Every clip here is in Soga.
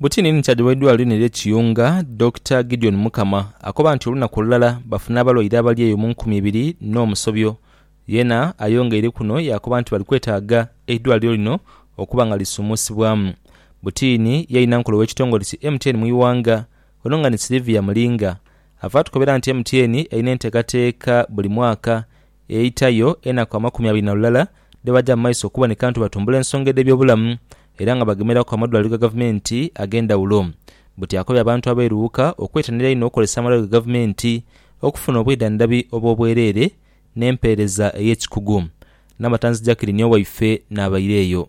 Butini ni kyaja w'eidwaliro lino ery'e Kiyunga, Dokita Gideon Mukama akoba nti olunaku olulala bafuna abalwaire abali eyo mu nkumi ibiri n'omusobyo. Yena ayongeire kuno yaakoba nti bali kwetaaga eidwaliro lino okuba nga lisumuusibwamu. Butini ye inhankole w'ekitongole ki MTN mu ighanga, ono nga ni Sylivia Mulinga avaatukobera nti MTN erina enteekateeka buli mwaka Eidhitayo enaku amakumi abiri na lulala dhe baja mu maiso okuboneka nti batumbula ensonga edh'ebyobulamu era nga bagemeraku amadwaliro ga gavumenti ag'endhawulo. Buti akobye abantu abairuwuka okwetanira einho okukozesa amalwaliro ga gavumenti okufuna obwidhandhabi obw'obwereere n'empeereza ey'ekikugu. Nabatanzi Jacqueline Owaife n'abaire eyo.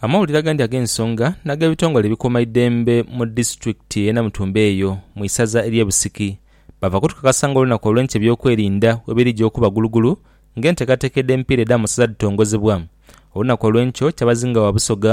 Amawulire agandi ag'ensonga n'ag'ebitongole ebikuuma eidembe mu disitulikiti ey'e Namutumba eyo mu isaza ery'e Busiki bava kutukakasa nga olunaku olw'enkya eby'okwerinda bwebirija okuba gulugulu nga enteekateeka edh'emipiira edh'amasaza dhitongozebwa. Olunaku olw'enkyo Kyabazinga wa Busoga,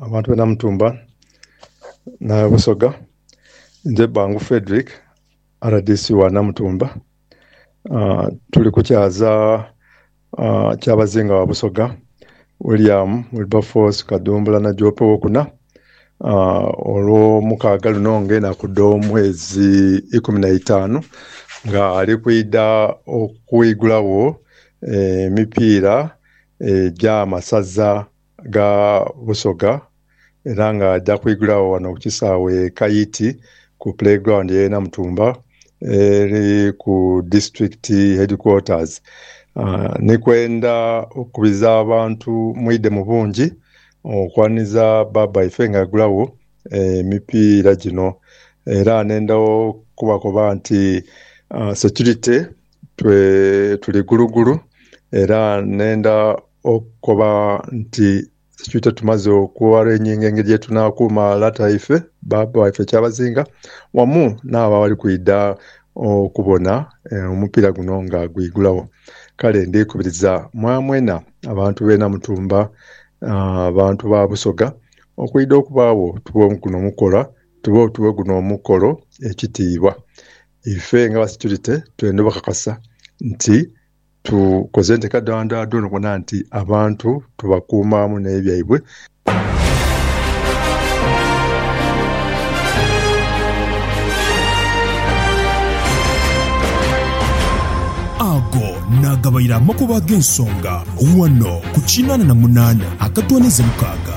Abantu b'e Namutumba na Busoga. Nze Bbangu Fredrick, rdc wa Namutumba. Tuli ku kyaza Kyabazinga wa Busoga, William Wilberforce Kadumbula Najoope Owokuna, Olwomukaaga luno nga enaku dh'omwezi ikumi na itaanu, nga ali kwidha okwigulagho emipiira egy'amasaza. gha Busoga era nga aja kwigulagho ghano ku kisaawe e Kaiti ku Play Ground y'e Namutumba eri ku District Headquarters ni kwenda okukubiza abantu mwidhe mu bungi okwaniriza bbaabba ife nga agulagho emipiira gino era nenda okubakoba nti securite twe tuli gulugulu era nenda okukoba nti ekibiita tumaze okwewala enyengo engeri gyetunakuuma lata waife, baaba waife kyabazinga wamu naabo abali kwidha okubona omupiira guno nga gwigulagho. Kale ndikubiriza mwamwena abantu b'e Namutumba, abantu ba Busoga okwidha okubaagho tube guno omukolo ekitiibwa. Ife nga aba securite twenda obakakasa nti tukoze enteeka dha dhoona okubona nti abantu tubakuuma wamu n'ebyo byaibwe. Ago naagabaire amakubo ag'ensonga ghano ku kinaana na munaana akatoonheze mukaaga.